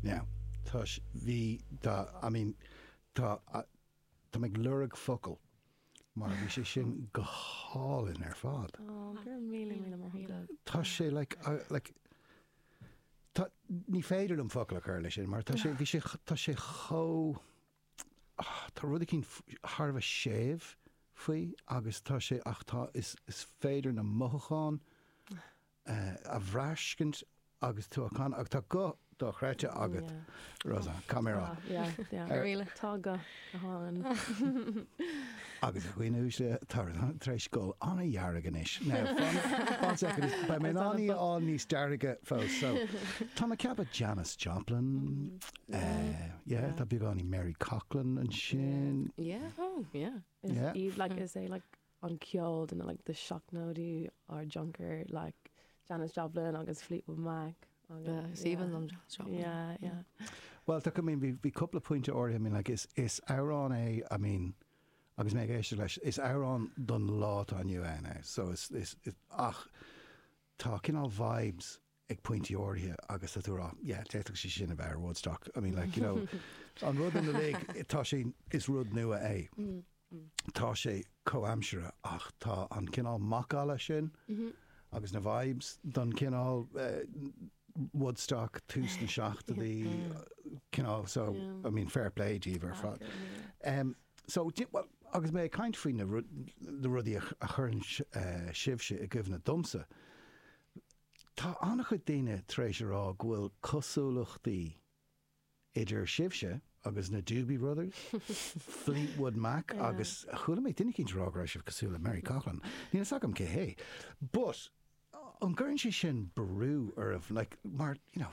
Now, tá s- bhí, tá, I mean, tá, a- tá mé ag lorg focal mar bhí sé sin go hálainn ar fad. Ó, go raibh míle, míle maith agat. Tá sé, like, I, like, tá, ní féidir liom focal a chur leis sin mar tá sé, bhí sé, tá sé chomh, ah, tá rud eicínt f- thar a bheith séimh faoi agus tá sé, ach tá, is, is féidir na mothúcháin a bhraiscint agus tú á chanadh agus tá guth dochreidte agat, Rosann. Go raibh maith agat. Yeah, yeah. Really? Tá guth go hálainn. Agus a dhaoine uaisle tá sí tar éis dul ana-dhearg anois. Now, fan, fan second is beidh mé in ann í a fháil níos dearga fós. So, tá mé ag ceapadh Janis Joplin, eh, yeah, tá beagáinín Mary Coughlan ansin. Yeah, oh, yeah. Is Yeah. í, like, is é, like, an ceol de like na seachtóidí ár dtionchar like Janis Joplin agus Fleetwood Mac agus yeah yeah yeah. Bhuel tá I mean bhí bhí cúpla pointe áirithe I mean like is is amhrán é I mean agus mé ag éisteacht leis is amhrán don lá atá inniu ann é so is is ach tá cineál vibes ag pointí áirithe agus tá tú ag rá yeah d'fhéadfadh sé sin a bheith ar Woodstock I mean like you know an rud uilig tá sé is rud nua é tá sé comhaimseartha ach tá an cineál macalla sin agus na vibes don cineál Woodstock tús na seachtaidí cineál so I mean fair play daoibh ar fad em so do you know agus mé ag caint faoi na rudaí a chuireann sibhse i gcuimhne domsa Tá an-chuid daoine tar éis a rá go bhfuil cosúlachtaí idir sibhse agus na Doobie Brothers, Fleetwood Mac agus chuala mé duine eicínt ag rá go raibh sibh cosúil le Mary Coughlan. Níl fhios agam cé hé but an gcuireann sé sin brú oraibh like mar, you know,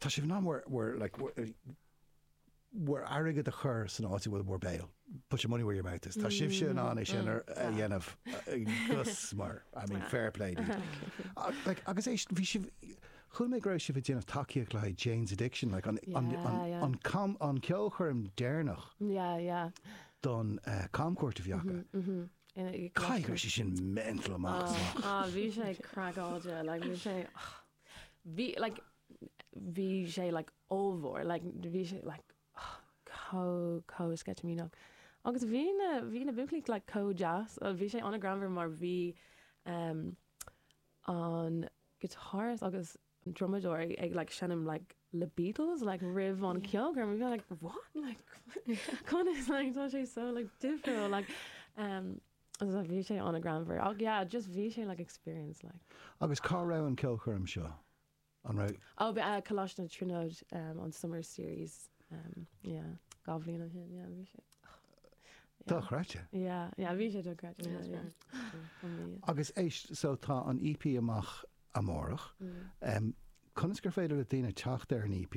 Tá sibh in ann bhur, bhur, like, bhur, bhur airgead a chur san áit a bhfuil bhur béal, put your money where your mouth is. Tá sibhse in ann é sin ar, a dhéanamh, gus, mar, I mean, fair play daoibh. Ach, like, agus é sin, bhí sibh, chuala mé go raibh sibh ag déanamh tacaíocht le haghaidh Jane's Addiction, like, an, an, an, Yeah, yeah. an cam, an ceolchoirm deireanach Yeah, yeah. don, eh, camchuairt a bhí acu. In a- Caithfidh go raibh sé sin mental amach is amach. Ah, bhí sé craiceáilte, like, bhí sé, Bhí like bhí sé like ollmhór like bhí sé like oh comh comh sceitimíneach agus bhí na bhí na buachaillí like comh deas oh bhí sé an-ghreannmhar mar bhí ehm an guitarist agus an drumadóir ag ag like seinm like the Beatles like roimh an cheolchoirm and we were like what like conas like tá sé so like difriúil like ehm. So bhí sé ana-ghreannmhar. Ach yeah, just bhí sé like experience like. Agus cá raibh an ceolchoirm seo? An raibh. Oh, bhí eh, Coláiste na Tríonóid um, an Summer Series um, yeah, dhá bhliain ó shin, yeah, bhí sé. Dochreidte. Yeah, yeah, bhí sé dochreidte. Yeah, yeah, yeah. Amazing. Agus éist, so tá an EP amach amárach. Mm. Um, conas gur féidir le daoine teacht ar an EP?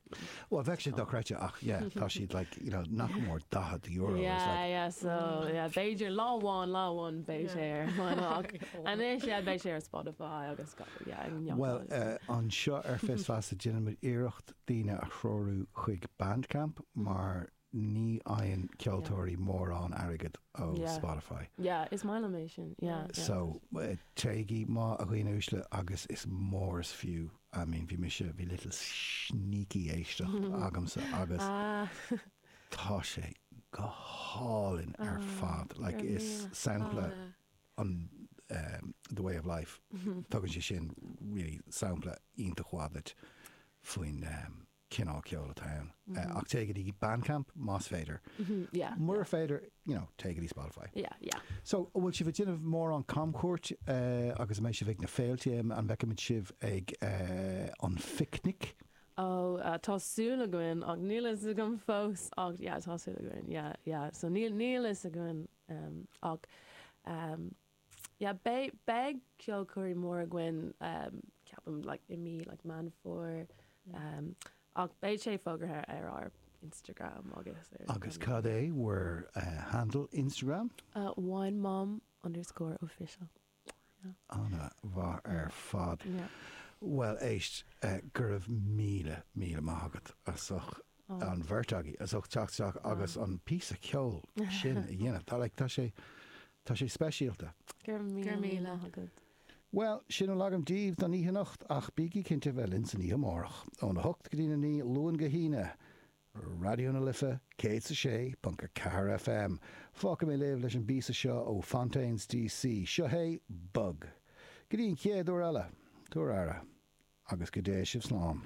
Well bheadh sé dochreidte ach yeah tá siad like you know nach mór €40 is Yeah, like yeah, so, yeah, b'fhéidir lá amháin, lá amháin beidh sé ar vinyl ach anois, yeah, beidh sé ar Spotify agus ga- yeah, ag neart eile. Well, eh, anseo ar Fios Feasa déanaimid iarracht daoine a threorú chuig Bandcamp mar Ní fhaigheann ceoltóirí mórán airgid ó Spotify. Yeah, is maith liom é sin. Yeah, yeah. So, téigí, a dhaoine uaisle, agus is mór is fiú, I mean, bhí mise, bhí little sneaky éisteacht agamsa agus tá sé go hálainn ar fad. Like, is sampla an The Way of Life, tugann sé sin really sampla iontach mhaith duit faoin cineál ceoil atá ann ach téigh go dtí Bandcamp más féidir. Mura féidir, you know, téigh go dtí Spotify. So, an bhfuil sibh ag déanamh mórán camchuairt agus an mbeidh sibh ag na féilte? An bhfeicfimid sibh ag an bPicnic? Oh, yeah, tá súil againn ach níl a fhios agam fós ach yeah, tá súil againn, yeah, yeah. So, níl, níl a fhios againn ach, yeah beidh beidh ceolchoirm mór againn ceapaim like i mí like Meán Fómhair ach beidh sé fógartha ar ár Instagram agus ar. Agus cad é bhur handle Instagram? Wine Mom underscore official yeah. Ana mhaith ar fad. Yeah. Bhuel éist go raibh míle míle maith agat as ucht Ó. an bheirt agaibh as ucht teacht isteach agus an píosa ceoil sin a dhéanamh. Tá like, tá sé, tá sé speisialta. Go raibh míle, míle maith agat. Bhuel, sin a bhfuil agam daoibh don oíche anocht ach bígí cinnte bheith linn san oíche amárach, óna hocht go dtí na naoi, Luan go hAoine, Raidió na Life 106.4 FM. Fágfaidh mé libh leis an bpíosa seo ó Fontaines D.C. Seo hé Bug. Go dtí an chéad uair eile, tabhair aire agus go dté sibh slán.